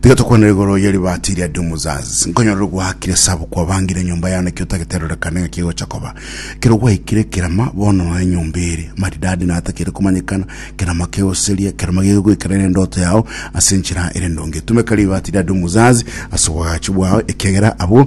Tiga tokwanere igoro ye ribaati ria Dumuzaz, nkonyorere gwaakire sabu kwabangire enyomba yane ekero otagete erorekane ng'aki egocha koba. Ekero gwaikire kerama, bono nonya enyomba ere, maridadi na atakeire komanyekana, kerama kegoseria, kerama geke goikera ere endoto yao ase enchera ere ndonge. Tumeka ribaati ria Dumuzaz ase obwagachi bwao, ekiagera abwo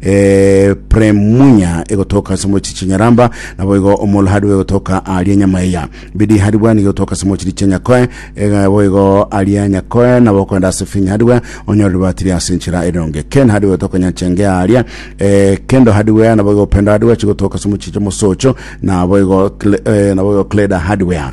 eh, Premunya egotoka ase mochi chinyaramba, naboigo Omolhadu egotoka aria nyama eya Bidihadibwa nigo egotoka ase mochi chia Nyakoe, ega boigo aria Nyakoe nabo okoenda ase Finyhadibwa onyore ribatiri ase enchera eronge. Kenhadibwa egotoka Nyachenge aria eh, Kendohadibwa naboigo Pendohadibwa chigotoka ase mochi chia Mosocho, naboigo Kle- eh, naboigo Kledahadibwa.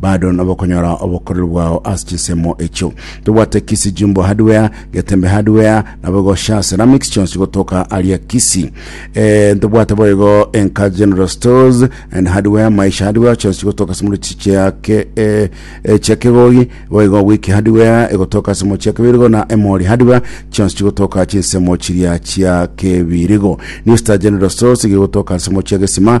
Bado nabokonyora obokoreri bwao ase chinsemo echio. Tobwate Kisii Jumbo Hardware, Getembe Hardware, nabogoshare Ceramics chionsi gotoka aria Kisii. Eh, ntobwate boigo Enka General Stores and Hardware, Maisha Hardware chionsi gotoka ase moruti chia ke eh, eh, chia Kegogi, boigo Wiki Hardware egotoka ase mochia Kebirigo na Emori Hardware chionsi chigotoka chinsemo chiria chia Kebirigo. New Star General Stores gigotoka ase mochia Gesima